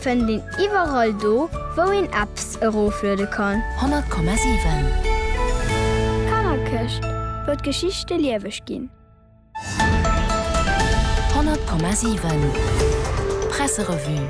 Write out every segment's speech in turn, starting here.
Fënnt een iwwerall do wou een Apps erofluede kann. 100,7. Kannerkëscht, wou d'Geschichte lieweg ginn. 100,7. Presserevue.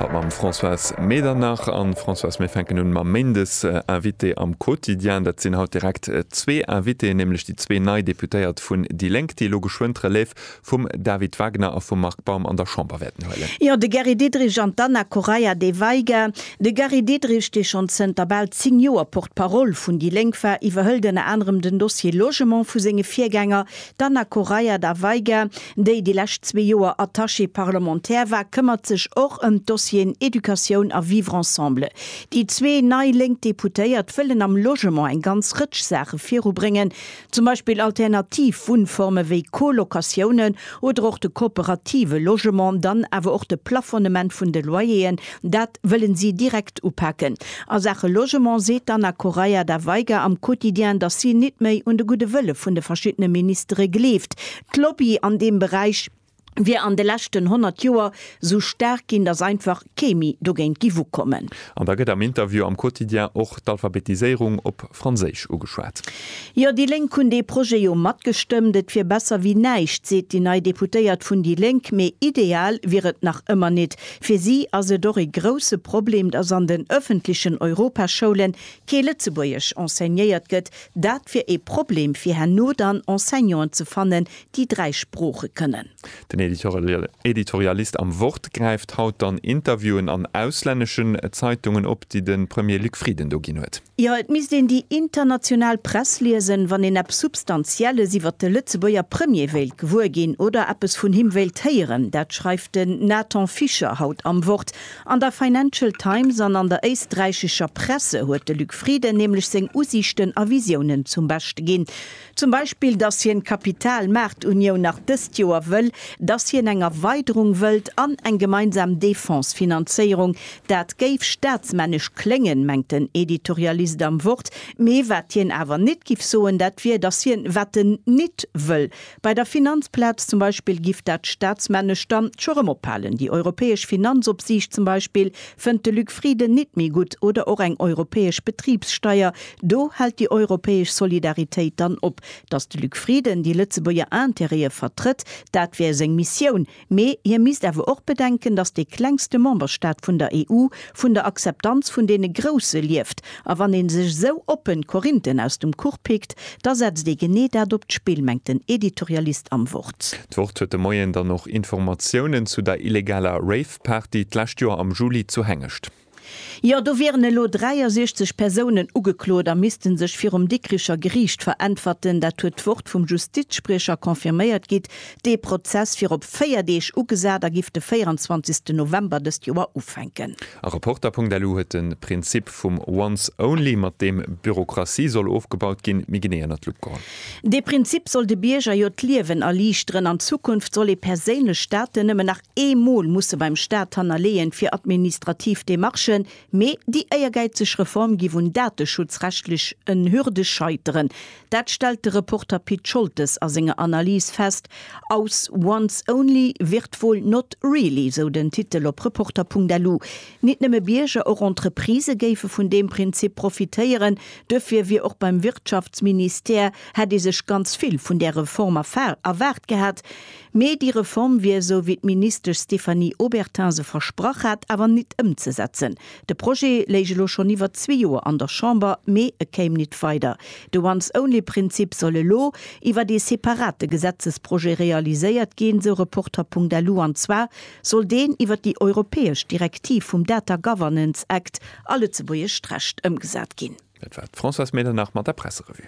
Haut mam Françoise Medernach. An Françoise, mir fänken un mam Méindesinvité am Quotidien. Dat sinn haut direkt zwee Invitéen, nämlech déi zwee nei Deputéiert vun déi Lénk, déi elo geschwënn d'Relève vum David Wagner a vum Marc Baum an der Chamber wäerten huelen. Jo, de Gary Diderich an d'Anna Correia de Veiga. De Gary Diderich, dee schonn zënter bal zéng Joer Porte-parole vun déi Lénk war, iwwerhëlt ënner anerem den Dossier Logement vu senge Virgänger. D'Anna Correia da Veiga, déi déi lescht zwee Joer Attachée parlementaire war, këmmert sech och ëm d'Dossieren Educatioun a Vivre ensemble. Déi zwee nei lénk Deputéiert wëllen am Logement eng ganz Rëtsch Saache virubréngen, Zum Beispill alternativ Wunnforme wéi Colocatiounen oder och de kooperative Logement, dann awer och de Plafonnement vun de Loyeren, dat wëllen si direkt upaken. A Saache Logement seet d'Anna Correia da Veiga am Quotidien, datt si nit méi un de gudde Wëlle vun de verschiddene Ministere gleeft. D'Lobby an deem Beräich. wier an de leschten 100 Joer sou staark ginn, datt einfach kee méi dogéint giff ukommen. An da gëtt am Interview am Quotidien och d'Alphabetiséierung op Franséisch ugeschwat. Jo, déi Lénk hunn dee Projet jo matgestëmmt. Et wier besser wéi näischt, seet déi nei Deputéiert vun déi Lénk. Mee ideal wier et nach ëmmer nit. Fir si ass et och ee grousse Problem, datt an den ëffentlechen Europaschoulen kee Lëtzebuergesch enseignéiert gëtt. Dat wier ee Problem, fir herno dann Enseignanten ze fannen, déi dräi Sprooche kënnen. Den Editorialist am Wort gräift haut dann Interviewen an auslänneschen Zeitungen op, déi de Premier Luc Frieden do ginn huet. Jo, et misst een déi international Press liesen, wann een eppes Substantielles iwwert de Lëtzebuerger Premier wéilt gewuer ginn oder eppes vun him wéilt héieren. Dat schreift den Nathan Fischer haut am Wort. An der Financial Times an an der éisträichescher Presse huet de Luc Frieden nämlech seng Usiichten a Visiounen zum Beschte ginn. Zum Beispill, dass hien d'Kapitalmaartunioun nach dëst Joer wëll, dass hien eng Erweiderung wëllt an eng gemeinsam Defense-Finanzéierung. Dat géif staatsmännesch kléngen, mengt den Editorialist am Wort. Mee wat hien awer nit giff soen, dat wier, dass hien wat en nit wëll. Bei der Finanzplaz zum Beispill giff dat staatsmännesch dann scho rëm ophalen. Déi europäesch Finanzopsiicht zum Beispill Fënnt de Luc Frieden nit méi gutt, oder och eng europäesch Betribssteier? Do hält déi europäesch Solidaritéit dann op. Datt de Luc Frieden déi Lëtzebuerger Intérêtë vertrëtt, dat wär seng Missioun, mee hie misst awer och bedenken, datt dee klengste Memberstaat vun der EU vun der Akzeptanz vun deene Grousse lieft. A wann ee sech esou oppen d'Korinthen aus dem Kuch pickt, da setzt ee genee dat op d'Spill, mengt den Editorialist am Wort. D'Wort huet de Moien dann och Informatiounen zu der illegaler Rave D'Party d'lescht Joer am Juli zu Hengescht. Jo, do wieren elo 63 Persounen ugeklot a misste sech virum Dikricher Geriicht veräntwerten. Dat huet d'Wort vum Justizspriecher confirméiert. Gitt dee Prozess fir op 4 Deeg ugesat a giff de 24 November dëst Joer ufänken. A Reporter.lu huet de Prinzip vum Once Only, mat deem Bürokratie soll ofgebaut ginn, méi genee ënnert d'Lupp geholl. Dee Prinzip soll de Bierger jo d'Liewen erliichteren. An Zukunft soll ee perséinlech Daten nëmmen nach. ee Mol musse beim Staat hannerleeën fir administrativ Demarchen, mee déi éiergäizeg Reform gi vun dateschutzrechtlech en Hürde scheiteren. Dat stellt de Reporter Pit Scholtes a senger Analys fest aus Once only, virtual not really, sou den Titel op Reporter.lu. Nit nëmme Bierger, och Entreprisë géife vun deem Prinzip profitéieren. Duerfir wier och beim Wirtschaftsministère, hätt ee sech ganz vill vun där Reform erwaart gehat. Mee déi Reform wier, esou wéi d'Ministesch Stéphanie Obertin se versprach hat, awer nit ëmzesetzen. De Projet léich elo schonn iwwer zwee Joer an der Chamber, mee e kéim nit weider. De Once-only-Prinzip soll elo iwwer ee separate Gesetzesprojet realiséiert ginn, sou Reporter.lu, an zwar soll deen iwwer déi europäesch Direktiv vum Data Governance Act a lëtzebuergescht Recht ëmgesat ginn. Dat war d'Françoise Medernach mat der Presserevue.